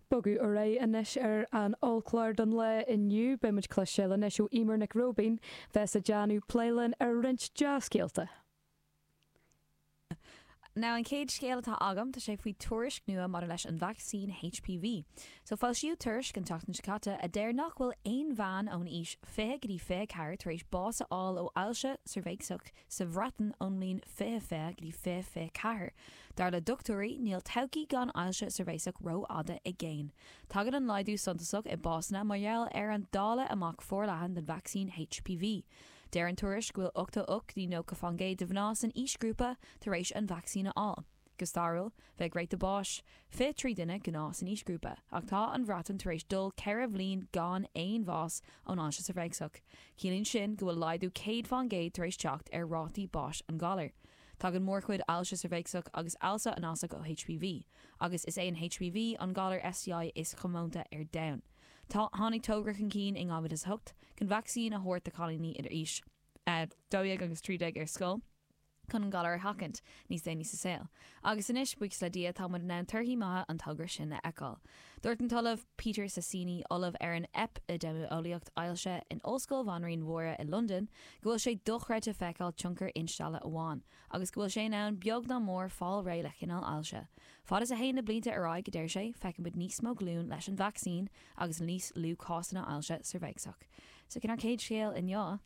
Bogadh ar aghaidh anois ar an ollchlár don lá inniu. Beidh muid ag cloisteáil anois ó Eimear Nic Roibín bheas ag déanamh plé linn ar roinnt dea-scéalta. Now an chéad scéal atá agam, tá sé faoi tuairisc nua maidir leis an vacsaín HPV. So foilsíodh tuairisc an tseachtain seo caite a deir nach bhfuil aon bhean ón aois fiche go dtí fiche ceathair tar éis bás a fháil ó ailse cheirbheacsach, Sa Bhreatain ón mbliain 2020 go dtí 2024, dar le dochtúirí, níl todhchaí gan ailse cheirbheacsach rófhada i gcéin. Tagann an laghdú suntasach i básanna mar gheall ar an dáileadh amach forleathan den vacsaín HPV. Deir an tuairisc go bhfuil 88 go dtí 90 faoin gcéad de mhná san aoisghrúpa tar éis an vacsaín a fháil. Go stairiúil, bheadh ráta báis fiche trí duine gnáth san aoisghrúpa, ach tá an Bhreatain tar éis dul ceithre bhliain gan aon bhás ón ailse cheirbheacsach. Ciallaíonn sin go bhfuil laghdú céad faoin gcéad tar éis teacht ar rátaí báis an ghalair. Tagann mórchuid ailse cheirbheacsach agus ailse anasach ó HPV, agus is é an HPV an galar STI is chomónta ar domhan. Tháinig togra chun cinn i 2008 chun vacsaín a thabhairt do chailíní idir aois a dó dhéag agus trí déag ar scoil. chun an galar a sheachaint níos déanaí sa saol. Agus anois, buíochas le Dia, tá muid in ann torthaí maithe an togra sin a fheiceáil. Dúirt an tOllamh Peter Sasieni, Ollamh ar an Eipidéimeolaíocht Ailse in Ollscoil Bhanríon Máire i Londain, go bhfuil sé dochreidte feiceáil tionchar instealladh amháin agus go bhfuil sé in ann beag nó mór fáil réidh le chineál ailse. Fad is a théann na blianta ar aghaidh, a deir sé, feicfidh muid níos mó glúin leis an vacsaín agus níos lú cásanna ailse cheirbheacsach. So sin ár gcéad scéal inniu.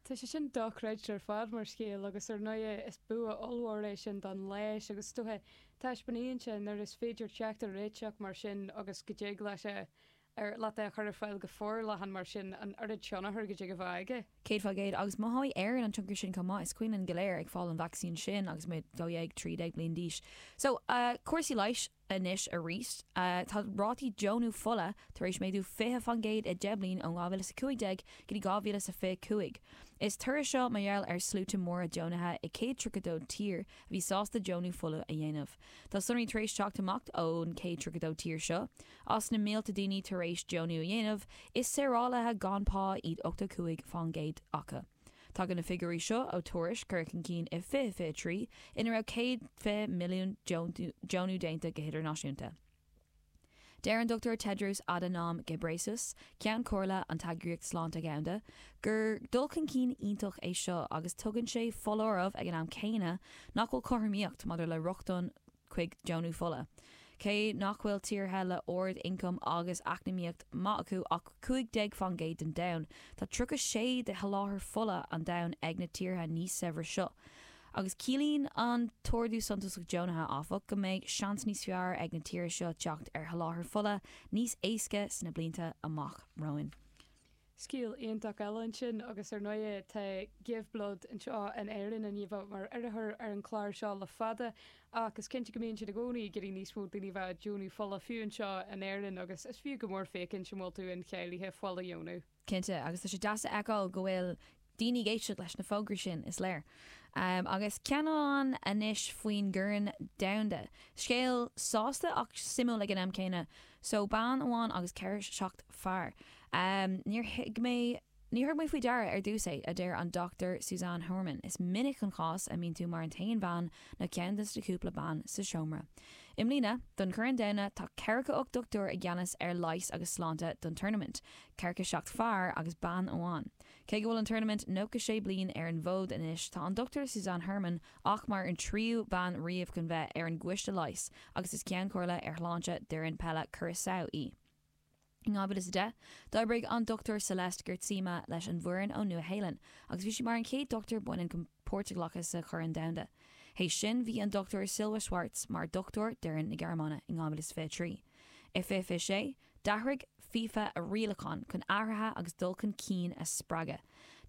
Tá sé sin dochreidte ar fad mar scéal agus ar ndóighe is bua ollmhór é sin don leigheas agus is dócha taispeánann sé nuair is féidir teacht ar réiteach mar sin agus go dtig leat é a chur ar fáil go forleathan mar sin an oiread tionchair go dtig a bheith aige. Céad faoin gcéad. Agus mothóidh Éirinn an tionchar sin chomh maith. Is cuimhin linn go léir ag fáil an vacsaín sin agus muid dhó dhéag, trí déag bliain d'aois. So, cúrsaí leighis. Anois arís, tá rátaí deonú fola tar éis méadú 20 faoin gcéad i deich mbliain ó 2015 go dtí 2025. Is toradh seo mar gheall ar sluaite móra deonaithe i 132 tír a bhí sásta deonú fola a dhéanamh. Tá sonraí tar éis teacht amach ón 132 tír seo. As na mílte daoine tar éis deonú a dhéanamh, is saorálaithe gan pá iad 85 faoin gcéad acu. Tagann na figiúirí seo ó tuairisc a cuireadh chun cinn i 2023 ina raibh 120 milliún deonú déanta go hidirnáisiúnta. Deir an Dr Tedros Adhanom Ghebreyesus, Ceann Comhairle an tEagraíocht Sláinte Dhomhanda, gur dul chun cinn iontach é seo agus tugann sé foláireamh ag an am céanna nach bhfuil cothromaíocht maidir le rochtain chuig deonú fola. Cé nach bhfuil i dtíortha le ard ioncam agus eacnamaíocht maith acu ach 15 fán gcéad den domhan, tá 36 de sholáthar fola an domhain ag na tíortha níos saibhre seo. Agus ciallaíonn an t-ardú suntasach deonaithe, áfach, go mbeidh seans níos fearr ag na tíortha seo teacht ar sholáthar fola níos éasca sna blianta amach romhainn. Scéal iontach eile ansin, agus ar ndóigh tá Give Blood anseo in Éirinn an-mhaith mar urraitheoir ar an chlár seo le fada, ach is cinnte go mbíonn siad i gcónaí ag iarraidh níos mó daoine a bheith ag deonú fola, fiú anseo in Éirinn, agus is fiú go mór féachaint an bhfuil tú incháilithe fuil a dheonú. Cinnte, agus tá sé deas a fheiceáil go bhfuil Daoine ag éisteacht leis na fógraí sin, is léir. Agus ceann amháin anois faoin gCorn Domhanda. Scéal sásta ach suimiúil ag an am céanna. Só bean amháin agus ceathracha seacht fear. Níor thug mé faoi deara ar dtús é, a deir an Dr Suzanne Huurman. Is minic an cás é go mbíonn tú mar an t-aon bhean nó ceann de na cúpla bean sa seomra. I mbliana, don Chorn Domhanda, tá ceathracha ocht dochtúir i gceannas ar leighis agus sláinte don turnaimint, ceathracha seacht fear agus bean amháin. Cé go bhfuil an turnaimint nócha sé bliain ar an bhfód anois, tá an Dr Suzanne Huurman ach mar an tríú bean riamh chun bheith ar an gCoiste Leighis agus is Ceann Comhairle ar Shláinte d'fhoireann peile Curaçao í. In 2010, d'oibrigh an Dr Celeste Geertsema leis an bhfoireann ón Nua-Shéalainn agus bhí sí mar an chéad dochtúir baineann chun páirt a ghlacadh sa Chorn Domhanda. Tar éis sin, bhí an Dr Silja Schwarz mar dhochtúir d'fhoireann na Gearmáine in 2023. In 2026, D'athraigh FIFA a rialacháin chun athruithe agus dul chun cinn a spreagadh.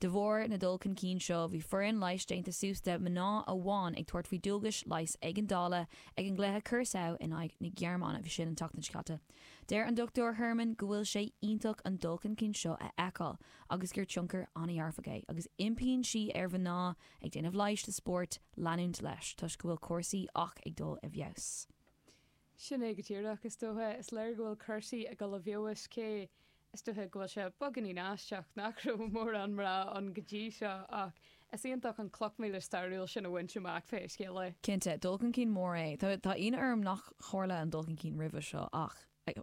De bharr na dul chun cinn seo, bhí foireann leighis déanta suas de mná amháin ag tabhairt faoi dualgais leighis éigeandála ag an gcluiche Curaçao in aghaidh na Gearmáine a bhí ansin an tseachtain seo caite. Deir an Dr Huurman go bhfuil sé iontach an dul chun cinn seo a fheiceáil agus gur tionchar an-dhearfach é agus impíonn sí ar mhná ag déanamh leighis sa spórt leanúint leis toisc go bhfuil cúrsaí ach ag dul i bhfeabhas. Sin é go díreach, is dócha. Is léir go bhfuil cúrsaí ag dul i bhfeabhas, cé, is dócha, go bhfuil sé beagáinín aisteach nach raibh mórán mná ann go dtí seo, ach is iontach an chloch mhíle stairiúil sin a bhaint amach, pé scéal é. Cinnte, dul chun cinn mór é. Tá ionadh orm nár tharla an dul chun cinn roimhe seo, ach